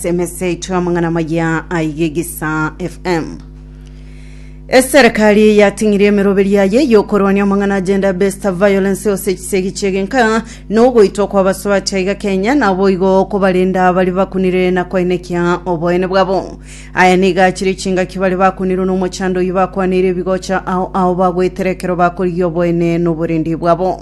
Semese itwe amang'ana maya aige gisa FM. Eserekari yating'irie emeroberi yaye yokorwania amang'ana agenda best violence ose chisegi chegenka nogoitwa kwa basubati aiga Kenya naboigo kobarenda bari bakunire na koenekia oboene bwabo. Aya niga achire chingaki bari bakunirwe nomochando oyi bakwaneire ebigocha ao ao bagwetera ekero bakorigia oboene noborendi bwabo.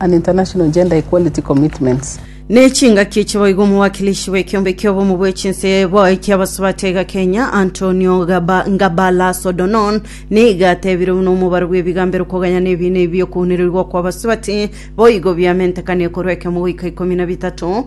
and international gender equality commitments. Ne chingaki echi boigo omowakilishi bw'ekiombe ki'obomo bwe chinse ebo eki'abasubati aiga Kenya, Antonio Gaba- Ngabalaso O'Donon, niga atebire buna omobaro bw'ebigambero koganya nebiina ebi bi'okounereigwa kw'abasubati boigo biamentekanie korwa ekemo goika ikomi na bitato,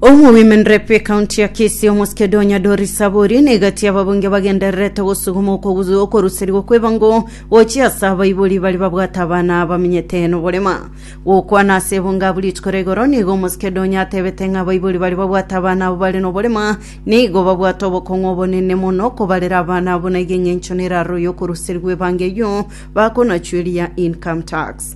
Omo Women Rep ekaunti ya Kisii omosike Donya Doris Saburi negati ababunge bagendererete gosuguma okoguzu okoruserigwa kwebango gochia ase abaibori bari babwate abana abamenyete noborema. Gokwana ase ebunge abu rituko rigoro nigo omosike Donya atebete ng'a abaibori bari babwate abana abo bare noborema nigo babwate obokong'u obonene mono kobarera abana abo naigo eng'encho neraroyio okoruserigwa ebango eyio bakonachueria income tax.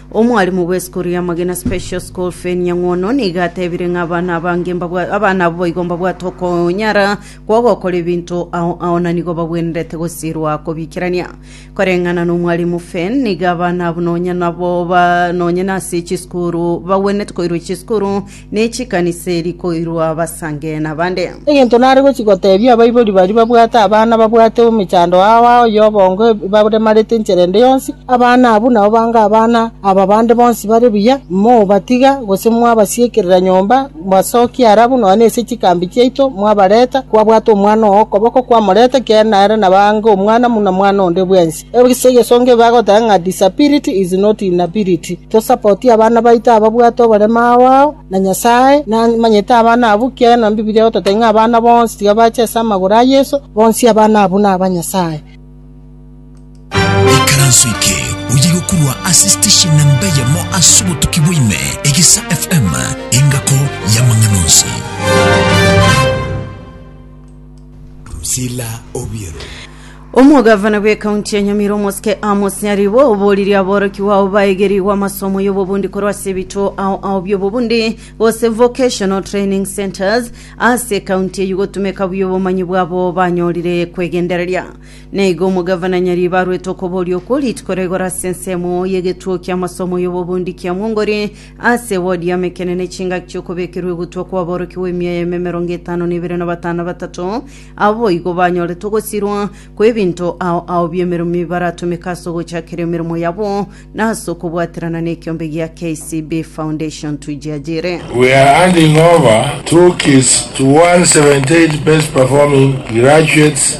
Omwalimu bw'esukuru ya Magina Special School Feni Nyang'ono nigo atebire ng'a abana abange mbabwa abana abo boigo mbabwate okonyara kwa ogokora ebinto ao ao na nigo bagwenerete gosirwa kobikerania. Koreng'ana na omwalimu Fen, nigo abana abo nonya nabo ba nonya nase chisukuru bagwenerete koirwa chisukuru Ne chikanisa eri koirwa abasange na bande. Egento nare gochia gotebia abaibori baria babwate abana babwate emechando ao ao y'obongo ebaremarete enchera ende yonsi, Abana abwo nabo bange abana aba bande bonsi bare buya, mobatiga, gose mwabasiekerera nyomba, mbasokia ara buna onye ase chikambi chiaito mwabareta, kwabwata omwana oo okoboko kwamoreta, kiagera nere nabange omwana buna mwana onde bwensi. Ekisaku egesongo ebe agoteba ng'a disability is not inability. Tosapotie abana baito ababwate oborema ao ao, na Nyasae namanyete abana abwo ekiagera na Bibilia egototebia ng'a abana bonsi tiga bache ase amagoro a Yeso, bonsi abana abwo naba Nyasae. Ekaranso eke oye gokorwa ase station namba eyemo ase obotuki bwa ime, Egesa FM, engako y'amang'ana onsi. Drusilla Obiero. Omogavana bw'ekaunti ya Nyamira omosike Amos Nyaribo oboririe aborokigwa ao baegerigwe amasomo y'obobundi korwa ase ebituo ao ao by'obobundi gose vocational training centres ase ekaunti eyio gotumeka buya obomanyi bwabo banyorire kwegendereria. Na igo omogavana Nyaribo arwete okoboria okwo rituko rigoro ase ensemo y'egetuo ki'amasomo y'obobundi kia Mwongori Ase ewodi y'Amekenene chingaki chi'okobekerwa egutwa kw'aborokigwa emia yaimo emerongo etano na ebere na batano batato, abo boigo banyoretwe ogosirwa kw'ebinto ao ao bi'emeremo baratomeka ase ogochakeria emeremo yabo na ase okobwaterana n'ekiombe gia KCB Foundation Tujiajiri. We are handing over two kits to 178 best performing graduates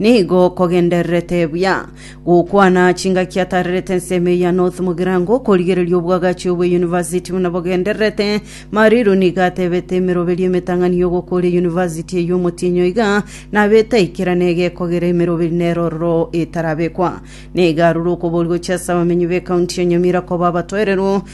Nigo kogendererete buya gokwana chingaki atarerete ensemo eya North Mugirango okorigereria obwagachi obwe University buna bogendererete. Mariru nigo atebete emeroberio emetang'ani y'ogokoria University eyio omotienyi oiga nabete aikera na egekogera emeroberi nero ororo etarabekwa. Nigo arure okobori gochia ase abamenyi b'ecounty ya Nyamira koba abatoereru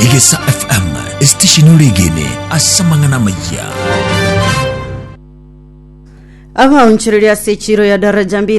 Egesa FM, esitesheni oregene ase amang'ana amayia. Abaonchoreria ase echiro ya Daraja Mbili